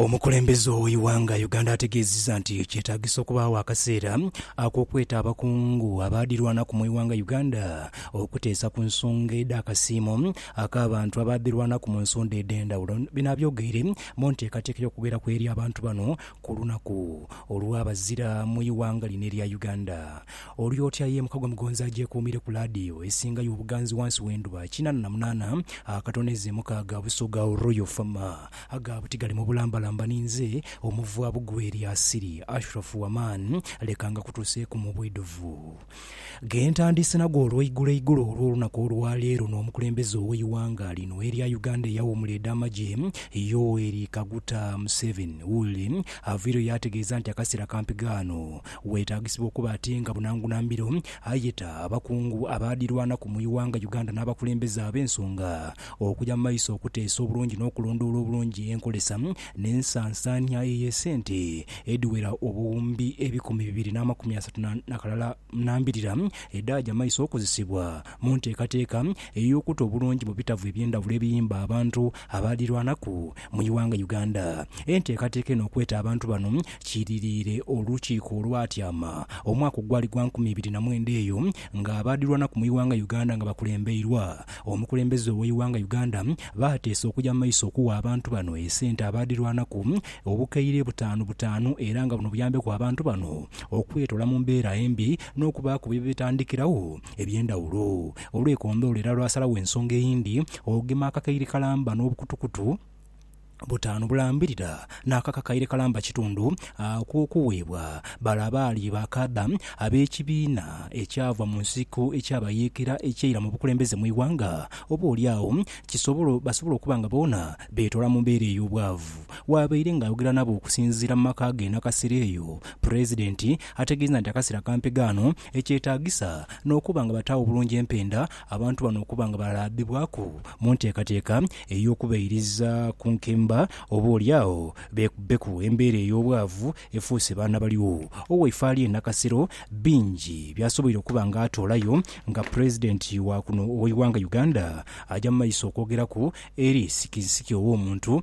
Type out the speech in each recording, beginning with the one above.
Omukulembeze ow'eighanga Uganda ategeezizza nti kyetaagisa okubaagho akaseera ak'okweta abakungu abaadhirwanaku mu ighanga Uganda okuteesa ku nsonga edh'akasiimo ak'abantu abaadhirwanaku mu nsonda edh'endhawulo. Bino abyogeire mu nteekateeka y'okugheraku eri abantu bano ku lunaku olw'abazira mu ighanga lino erya Uganda. Olyotya ye Mukagwa Mugonzi agyekuumire ku laadiyo esingayo obuganzi wansi w'endhuba kinana na munaana akatono ezeemukaaga Busoga Royal Fm Agaabo tigali mu bulambalamba ninze omuva bugwe eri Asiri, Ashrafu Waman, leka ngakutuuseeku mu bwidhuvu. Ghe ntandiise nago olweiguloigulo olw'olunaku olwa leero n'omukulembeze ow'eighanga lino erya Uganda eyawuumula edh'amagye, Yoweri Kaguta Museveni. Woolly avaireyo yaategeeza nti akaseera kampi ghano weetaagisibwa okuba ate nga bunangunambiro ayeta abakungu abaadhirwanaku mu ighanga Uganda n'abakulembeze ab'ensonga okuja mu maiso okuteesa obulungi n'okulondoola obulungi enkolesa n'ensansaania ey'esente edhiwera obuwumbi ebikumi bibiri n'amakumi asatu na kalala na mbirira edhaaja mu maiso okozesebwa mu nteekateeka ey'okuta obulungi mu bitavu eby'endhawulo ebiyimba abantu abaadhirwanaku mu ighanga Uganda. Enteekateeka eno okweta abantu bano kiidhiriire olukiiko olwatyama omwaka ogwali gwa nkumi ibiri na mwenda eyo ng'abaadhirwanaku mu ighanga Uganda nga bakulembeirwa Omukulembeze ow'eighanga Uganda baateesa okuja mu maiso okuwa abantu bano esente abaadhirwanaku obukaire butaanu butaanu era nga buno buyambeku abantu bano okwetoola mu mbeera embi n'okubaaku bye betandikiragho eby'endhawulo olw'ekondhoolo era lwasalagho ensonga eyindi okugema akakaire kalamba n'obukutukutu butaanu bulambirira n'ako akakaire kalamba kitundu akw'okuweebwa bale abaali baakaadha ab'ekibiina ekyava mu nsiko eky'abayeekera ekyaira mu bukulembeze mu ighanga, oba oli agho kisobole basobole okuba nga boona beetoola mu mbeera ey'obwavu. Waabaire ng'ayogera nabo okusinziira mu maka ge Nakasero eyo, Pulezidenti ategeeza nti akaseera ka mpegaano ekyetaagisa n'okuba nga bataagho bulungi empenda Abantu bano okuba nga balaabibwaku mu nteekateeka ey'okubairiza ku nkemba, oba oli agho beekubbeku embeera ey'obwavu efuuse baana baligho. Owaife ali e Nakasero bingi by'asoboire okuba nga atoolayo nga Pulezidenti wa kuno ow'eighanga Uganda aja mu maiso okwogeraku eri sikisiki ow'omuntu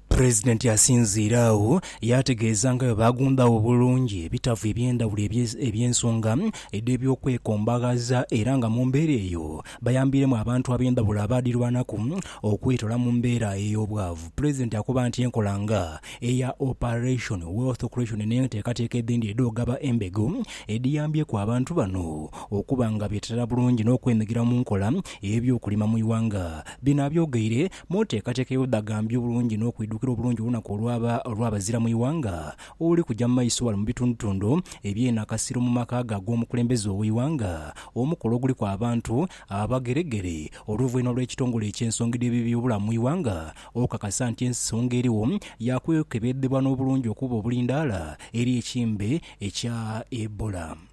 Pulezidenti yasinziira agho yaategeeza nga bwe baagundaagho bulungi ebitavu eby'endhawulo eby'ensonga edh'ebyokwekombaghaza era nga mu mbeera eyo bayambiiremu abantu ab'endhawulo abaadhirwanaku okwetoola mu mbeera ey'obwavu. Pulezidenti akoba nti enkola nga eya Operation Wealth Creation n'enteekateeka edhindi edh'ogaba embego edhiyambyeku abantu bano okuba nga beeteerera bulungi n'okwenyigira mu nkola ey'ebyokulima mu ighanga. Bino abyogeire Mu nteekateeka ey'obudhagambyo obulungi n'okwidhukira obulungi olunaku olwaba olw'abazira mu ighanga oluli kuja mu maiso ghale mu bitundutundu eby'eno akasiro mu maka ghe ag'omukulembeze ow'eighanga, omukolo oguliku abantu abageregere oluvwainhuma olw'ekitongole eky'ensongi dh'eby'ebyobulamu mu ighanga okukakasa nti ensonga eriwo ya kwekebedhebwa n'obulungi okuba obulindaala eri ekimbe ekya Ebola.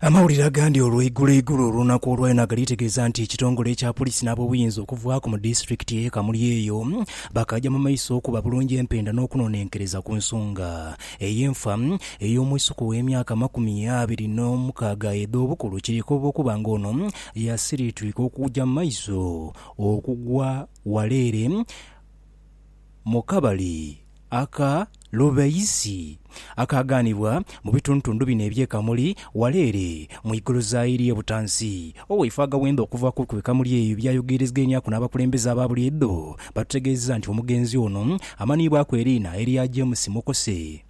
Amawulire agandi olweigulo igulo olunaku olwa ena galiitegeeza nti ekitongole ekya Poliisi n'abobuyinza okuvaaku mu disitulikiti eye Kamuli eyo bakaaja mu maiso okuba bulungi empenda n'okunonenkereza ku nsonga ey'enfa ey'omwisuka ow'emyaka amakumi abiri n'omukaaga edh'obukulu kirikoba okuba nga ono yasiritwika okuja mu maiso okugwa waleere mu kabali Aka lubeisi akaaghanibwa mu bitundutundu bino eby'e Kamuli wala ere mu igoloza eri e Butansi. Owaife Agawenda okuva ku e Kamuli eyo byayogeerezgainiaku n'abakulembeze aba buliidho batutegeezezza nti omugenzi ono amanhiibwaku eriina erya James Mukose.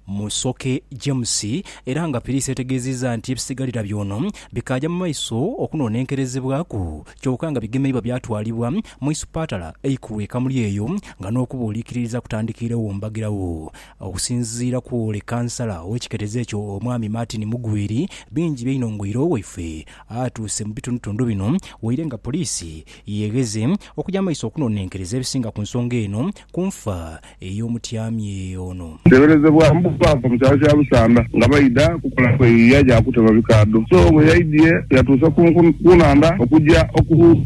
Musoke James era nga Piriisi yategeezizza nti ebisigalira by'ono bikaaja mu maiso okunonenkerezebwaku kyoka nga bigemeibwa byatwalibwa mu isupatala eikulu e Kamuli eyo nga n'okubuulikiririza kutandikiiregho mbagiragho okusinziira kw'ole kansala ow'ekiketezo ekyo omwami Martin Mugwiri bingi byainho ngoire owaife atuuse mu bitundutundu bino waire nga Poriisi yegheze okuja mumaiso okunonenkereza ebisinga ku nsonga eno ku nfa ey'omutyamye ono. Kiteberezebwa mbu baava mu kyalo kya Lusanda nga baidha kukola kweyiiya gya kutema bikaadho so bwe yaidhie yatuuse ku nhandha okuja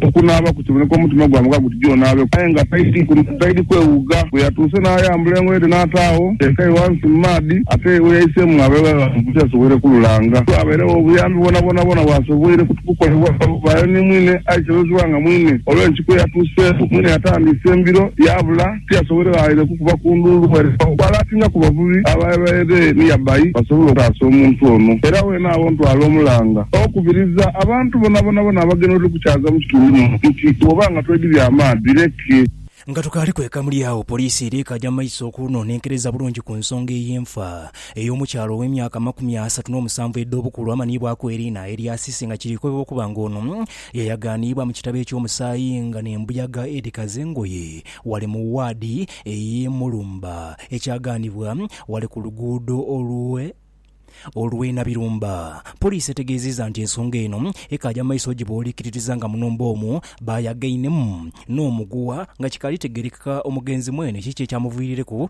okunaaba kukiboneka omutima gwamuga guti gye onaabeku aye nga taidhi kwewuuga. Bwe yatuuse n'ayambula engoye dhe n'ataagho teekayo ghansi mu maadhi ate we yaiseemu aghabeegho abantu bwe tiyasoboire kululanga. Tiwabairegho buyambi bwonabwona bwona bwasoboire kukolebwagho bayo ni mwine aye kiroozebwa nga mwine olw'enkiiko eyatuuseeku mwine yatandiise embiro yaabula. Tiyasoboile ghaire kukuba ku ndhuulu ere okwalaatinga ku bavubi ababaire niya bai basobole okutaasa omuntu ono. Era weene agho ntwala omulanga okubiriza abantu bonabonabona abagenwa etuli kukyaaza mu kitundu muno nti bwoba nga twedhibya amaadhi leke. Nga tukaali kweka muli agho, poliisi era ekaja mu maiso okunonenkereza bulungi ku nsonga ey'enfa ey'omukyala ow'emyaka amakumi asatu n'omusanvu edh'obukulu amanhiibwaku Erina Eriasisi nga kiri kukobebwa okuba nga ono Yayaganiibwa mu kitabo eky'omusaayi nga n'embuyaga edhikaza engoye ghale mu waadi ey'e Mulumba, ekyaganibwa ghale ku luguudo olwe olw'e Nabirumba. Poliisi etegeezizza nti ensonga eno ekaaja mu maiso gye bw'oliikiririza nga muno mboomu baayagainemu n'omuguwa nga kikaali tegeerekeka omugenzi mwene kiki ekyamuviirireku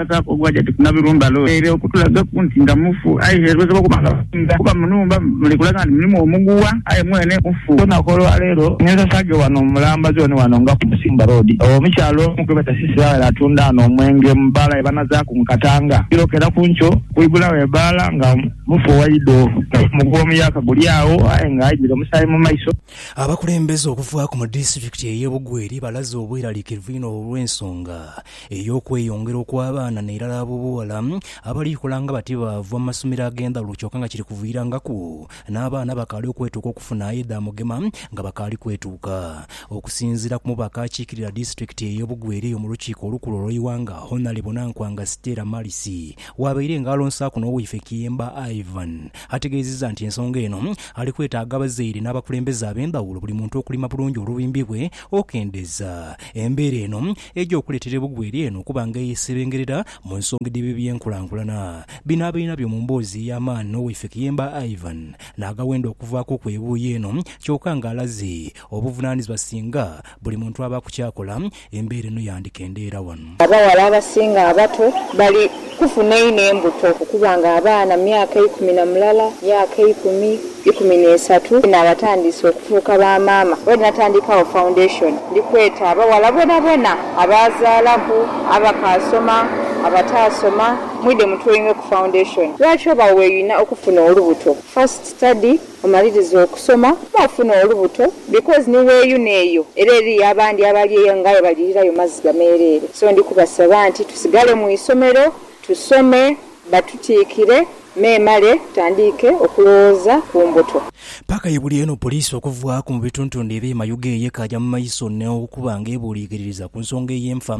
Abasaako ogwaja tikunabilwa mbalo ere okutulagaku nti nga mufu, aye erwezebwa okuba nga musinga kuba munhumba muli kulaga nti mulimu omuguwa, aye mwene mufu. Olunaku olwa leero ninsasaaghe wano mu mulamba zooni wano nga ku Musimba Road, omukyala omu gwe beta Cissy Rawera atunda ghano omwenge mu bbaala ye banazaaku mu Katanga ekiro kera ku nkyo. Kuigulagho ebbaala nga mufu waidho naye omuguwa omuyaka guli agho aye nga aidhire omusaayi mu maiso. Abakulembeze okuvaaku mu disitulikiti eye Bugweri balaze obweralikirivu inho olw'ensonga ey'okweyongera okw'abaana nairala ab'obughala abali kola nga bati baava mu masomero ag'endhawulo kyoka nga kiri kuviirangaku n'abaana abakaali okwetuuka okufuna aye dha mugema nga bakaali kwetuuka. Okusinziira ku mubaka akiikirira disitulikiti eye Bugweri eyo mu lukiiko olukulu olw'eighanga Honalebo Nankwanga Stella Marisi waabaire nga alonsaaku n'owaife Kiyemba Ivan ategeezizza nti ensonga eno ali kwetaaga abazaire n'abakulembeze ab'endhawulo buli muntu okulima bulungi olubimbi lwe okendeza embeera eno Eidha okuleetera ebugwa eri eno okuba nga eyeesebengerera mu nsonga edh'ebyo eby'enkulankulana. Bino abainha byo mu mboozi ey'amaani n'owaife Kiyemba Ivan n'agawenda okuvaaku ku ebuuyi eno kyoka ng'alaze obuvunaanizibwa singa buli muntu abaaku ky'akola embeera eno yandikendeera wano. Abaghala abasinga abato bali Kufuna inho embuto okuba nga abaana myaka ikumi na mulala, myaka ikumi, ikumi n'esatu ni nabatandiise okufuuka ba maama. Bwe natandikagho foundation ndi kweta abaghala boonaboona abaazaalaku, abakaasoma, abataasoma, mwidhe mutuoinwe ku foundation. Lwaki oba weeyuna okufuna olubuto? First study. Omaliriza okusoma n'ofuna olubuto because ni weeyuna eyo era eriyo abandi abali eyo nga aye balirirayo maziga meereere so ndi kubasaba nti tusigale mu isomero tusome batutiikire memale tutandiike okulowooza ku mbuto. Paaka ye buli eno poliisi okuvaaku mu bituntundu ebye Mayuge ye kaaja mu maiso n'okuba nga ebuuliikiririza ku nsonga ey'enfa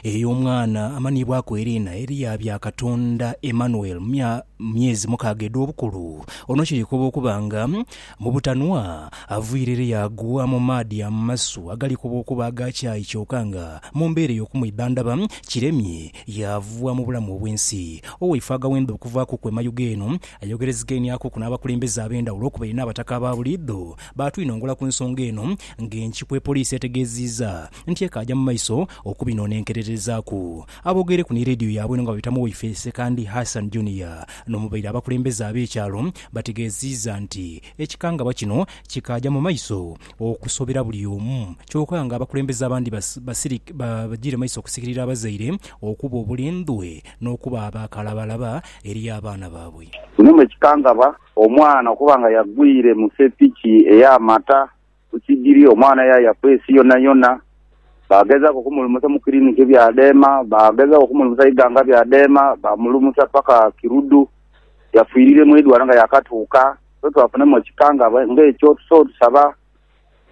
ey'omwana amaniibwaku Erina Eriya Byakatonda Emmanuel mu mya mu myezi mukaaga edh'obukulu, ono kirikoba okuba nga mu butanwa aviire ere yaagwa mu maadhi amasu agalikoba okuba aga kyayi kyoka nga mu mbeera ey'okumwidhandhaba kiremye yaava mu bulamu obw'ensi. Owaife aghawenda okuvaaku ku emayuge eno ayogerezigainiakuku n'abakulembeze ab'endhawulo okubaire n'abataka aba buliidho baatwinongola ku nsonga eno ng'enkiku epoliisi etegeeziiza nti ekaaja mu maiso okubinoonenkererezaaku. Aboogeireku ni leediyo yaabwe eno nga baita mu Waifeesi Sekandi Hassan Junior n'omubaire abakulembeze ab'ekyalo bategeeziiza nti ekikangabwa kino kikaaja mu maiso okusobera buli omu kyoka nga abakulembeze abandi bajiire maiso okusikirira abazaire okuba obulindhwe n'okuba aba kalabalaba eri abaana baabwe. Mulimu ekikangabwa omwana okuba nga yagwire mu sepiki ey'amata Ku sigiri, omwana yaayaku ensi yonayona. Baagezaaku okumulumusa mu kiriniki bya dheema, baagezaaku okumulumusa ighanga bya dheema, baamulumusa paka Kiruddu. Yafiirire mu idwaaliro nga yaakatuuka. Ffe twafunamu ekikangabwa ng'ekyo. Tusobola okusaba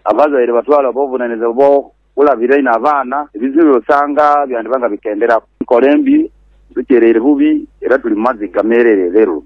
abazaire batwale obuvunaanyizibwa Olabira inho abaana, ebizibu by'osanga byandiba nga bikenderaku. Enkola embi, tutyeraire bubi era tuli mu maziga meerere leero.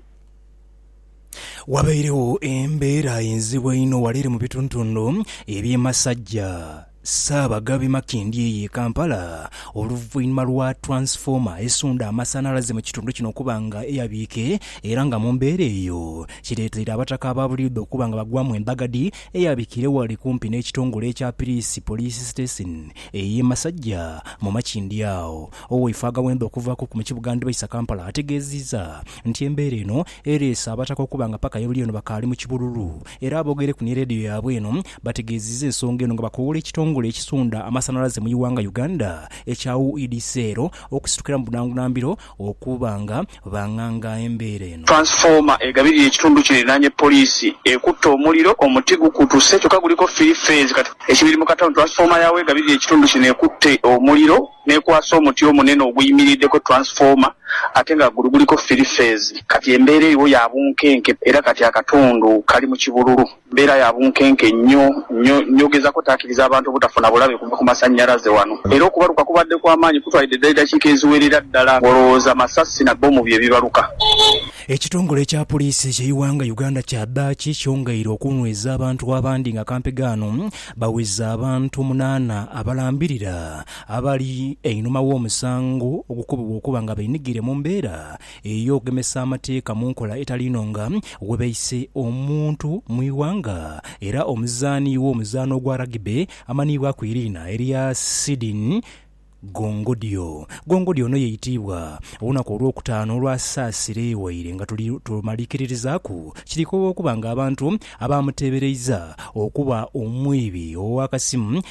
Wabairegho embeera enzibu einho wala ere mu bituntundu eby'e Masajja, Ssaabaghabi Makindye eyo e Kampala, oluvainhuma lwa twansifoma esundha amasanhalaze mu kitundu kino okuba nga eyabiike era nga mu mbeera eyo kireteire abataka ababuliidho okuba nga bagwamu endhagadhi eyabikire ghale kumpi n'ekitongole ekya Piriisi Poliisi Sitesin ey'e Masajja mu Makindye agho. Owaife agaghenda okuvaku mu kibuga Ndbaisa Kampala ategeeziza nti embeera eno ereese abataka okuba nga paka yabuly'eno bakaali mu kibululu era aboogereku ni leediyo yaabwe eno bategeeziza ensonga eno nga bakowoola ekitongole ekisunda amasanalaze mu iwanga Uganda ekya UEDCL okusitukiramu bunangunambiro okuba nga banganga embeera eno. Transformer egabirira ekitundu kino erinaanye poliisi ekutte omuliro, omuti gukutuse kyokka guliko firi feezi kati. Ekibiri mu Katown, Transformer ya w'egabirira ekitundu kino ekutte omuliro n'ekwasa omuti omunene oguyimirirdeko Transformer ate nga gulu guliko firi feezi. Kati embeera eriwo ya bunkenke era kati akatundu kali mu kibululu. Mbeera ya bunkenke nnyo nnyo nnyo. Gezako otaakiriza abantu obutafuna bulabe kuva ku masannyalaze wano. Era okubaluka kubadde kwa maanyi, kutwalidde ddala eddakiika eziwerera ddala ng'olowooza masasi na bbomu bye bibaluka. Ekitongole ekya Puliisi eky'eighanga Uganda kyadhaaki kyongeire okunhweza abantu abandi nga kampega ano baweza abantu munaana abalambirira abali einhuma w'omusango ogukobebwa okuba nga benigire mu mbeera ey'okugemesa amateeka mu nkola etali inho nga we baise omuntu mu ighanga era omuzaani w'omuzaano ogwa Rugby amanhiibwaku eriina erya Sidin Gongodio. Gongodio ono yeitiibwa olunaku olwokutaano olwa Saasire ewaire nga tuli tumalikiririzaaku kirikowa okuba nga abantu abaamuteebereiza okuba omwiibi ow'akasimu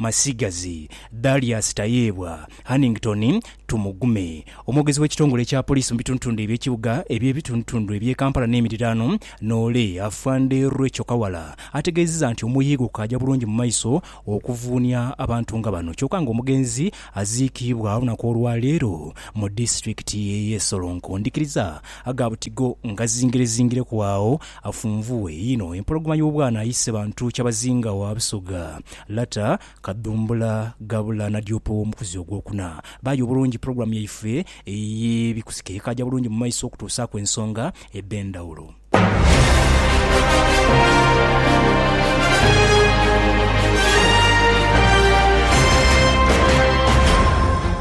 Masigazi, Darius Tayebwa, Hannington Tumugume, omwogezi w'ekitongole ekya poliisi mu bitundutunddu eby'ekibuga eby'ebitundutunddu eby'e Kampala n'emiriraano, Noole, Afande Recho Kawala ategeezezza nti omuyiigo gukaaja bulungi mu maiso okuvuunia abantu nga bano kyoka ng'omugenzi aziikiibwa olunaku olwaleero mu disitulikiti y'e Solonko. Ndikiriza aga butigo ngazingirezingireku agho Afunvughe inho empologoma y'obwana ayise bantu kyabazinga wa Busoga, Lata, Kadhumbula, Gabula na Diopa ow'omukuzi ogwokuna. Baaya obulungi pulogulaamu yaife ey'ebikusike ekaaja bulungi mu maiso okutuusaaku ensonga edh'endhawulo.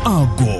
Ago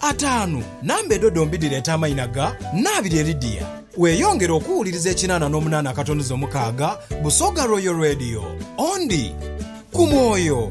Ataanu, Namba edho dhombi dhireeta amaina ga naabiri eri dia. Weeyongere okuwuliriza ekinaana n'omunaana akatonoza omukaaga Busoga Royal Radio. Ondi. Ku mwoyo.